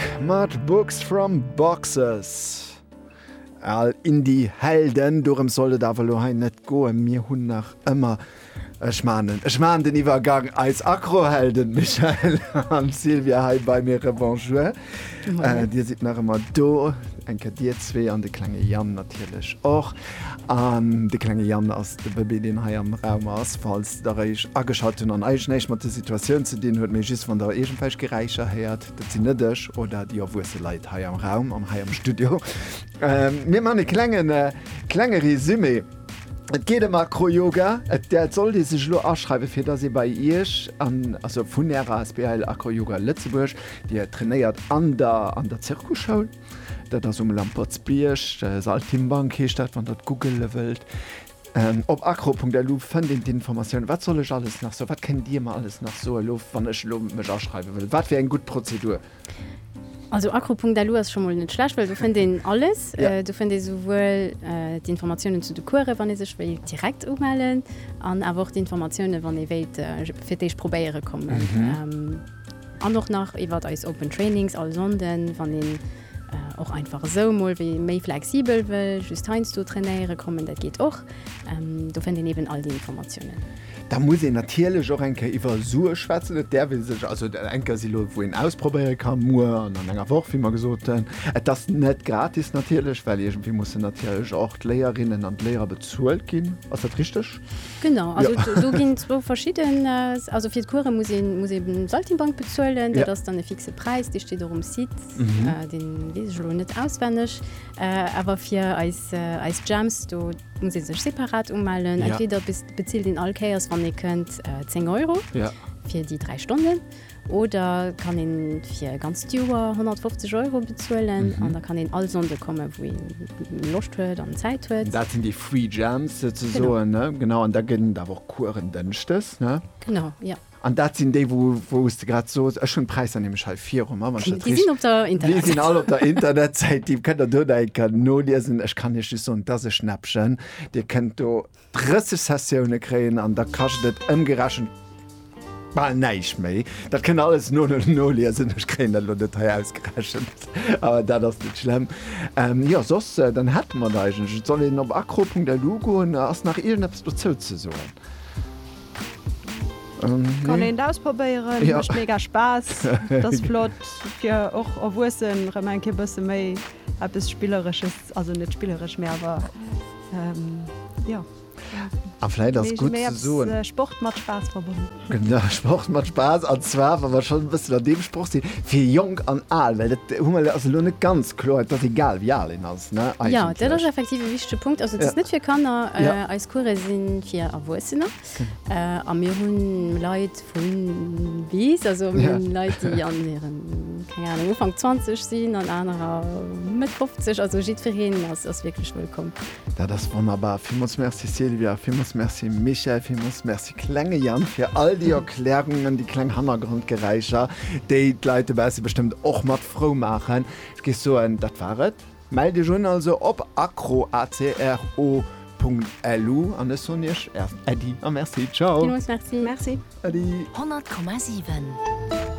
Book mat Books from Boxes. Al Indie-Helden, dorëms soll et awer elo hei net goen. Mir hunn nach ëmmer, ech man en, ech man den Iwwergang, eis Acro-Helden Michèle an Sylvia hei bei mir. Rebonjour. Dir sidd nach ëmmer do, eng Kéier dir zwee an de klenge Yann natierlech och. An de klenge Yann ass de Bëbee, deen hei am Raum ass, falls der eech ageschalt hunn an eigenéischt mat der Situatioun ze dinn huet, mee just wann der iergendwelch Geräischer héiert. Dat sinn net ech oder déi erwuesse Leit hei am Raum an hei am Studio. Mir man e klengen klenge Resumé. Et geet ëm Acroyoga. Et dat sollt ee sech elo aschreiwen, fir datt ee bei Iech an also vun Ärer Asbl Acroyoga Lëtzebuerg, Dir trainéiert an der an der Zirkusschoul. Dat ass um Lampertsbierg, Saltimbank heescht dat, wann Der et googele wëllt. Op acro.lu fënnt een d'Informatiounen. Wat soll ech alles nach soen? Wat kënnt Dir mer alles nach soen elo, wann ech elo mech aschreiwe wëll? Wat wier eng gutt Prozedur? Also acro.lu ass scho mol net schlecht, well do fënnt een alles. Do fënnt ee souwuel d'Informatiounen zu de Course, wann ee sech wéilt direkt umellen, an awer och d'Informatiounen, wann ee wéilt fir d'éischt probéiere kommen. An och nach iwwert eis Open Trainings all Sonnden, wann een. Och einfach esou emol wéi ee méi flexibel wëll just heiansdo trainéiere kommen, dat geet och. Do fënnt een eben all déi Informatiounen. Da muss een natierlech och eng Kéier iwwer Sue schwätzen. Et däerf ee sech also, eng Kéier si lo wou een ausprobéiere ka, muer an an enger Woch, wéi mer gesot hunn. Et ass net gratis natierlech, well iergendwéi mussen natierlech och d'Léierinnen an d'Léierer bezuelt ginn. Ass dat richteg? Genau, also do ginn zwou verschidden, also fir d'Course muss ee muss ee den Saltimbanque bezuelen, dat ass dann e fixe Präis, dee steet och um Site, deen weess ech elo net auswenneg. Awer fir eis eis Jams, do muss ee sech separat umellen, entweder bezilt een all Kéiers, wann ee kënnt, 10 Euro fir déi dräi Stonnen, Oder kann een fir e ganzt Joer 150 Euro bezuelen an da kann een all Sonnde kommen, wou een Loscht huet an Zäit huet. Dat sinn déi Free Jams souzesoen, ne? Genau, an da gëtt et awer och Coursen dënschdes, ne? Genau, jo. An dat sinn déi, wou, wou s de grad sos, ech hunn d'Präisser nämlech hei viru mer, wann ech dat Déi sinn op der richt. Déi sinn all op der Internetsäit. Internetsäit, déi kënnt der dodenken noliesen. Ech kann Iech just soen, dass e Schnäppchen, Dir kënnt do 30 Sessioune kréien an da kascht et ëmgerechent bal näischt méi. Dat kënnt der alles no noliesen, ech kréien dat elo net hei ausgerechent, awer dat ass net schlemm. Jo soss dann hätte mer et eigentlech. Et soll een op acro.lu goen. Ass nach iergendeppes dozou ze soen? Nee? Kann een et ausprobéieren. Jo. Mécht mega Spaass. Et ass flott fir och Erwuessen erëm eng Kéier e bësse méi eppes Spilleresches, also net spilleresch, mä awer. A vläit ass gutt ze soen. Sport mat Spaass verbonnen. Genau, Sport mat Spaass. An zwar, wa mer schonn e bëssen an deem Sproch sinn, fir jonk an al. Well dat hu mer, ass elo net ganz kloer, et ass egal, wéi al een ass, ne? Eigentlech. Jo, dat ass effektiv e wichtege Punkt. Also, et ass net fir Kanner. Eis Course si fir Erwuessener. A mir hunn Leit vu bis, also mir hunn Leit, déi an hiren, keng Anung, Ufank 20 sinn an anerer Mëtt 50, also jiddwereen ass wierklech wëllkomm. Dat ass wonnerbar. Villmools Merci Sylvia, villmools Merci Michèle, villmools Merci klenge Yann fir all déi Erklärungen, déi kleng Hannergrondgeräischer, déi d'Leit dobausse bestëmmt och mat frou maachen. Ech géif soen, dat war et. Mellt iech un also op acroacro.lu an ech soen iech Äddi a Merci. Ciao. Villmols Merci. Merci. Äddi. 100,7.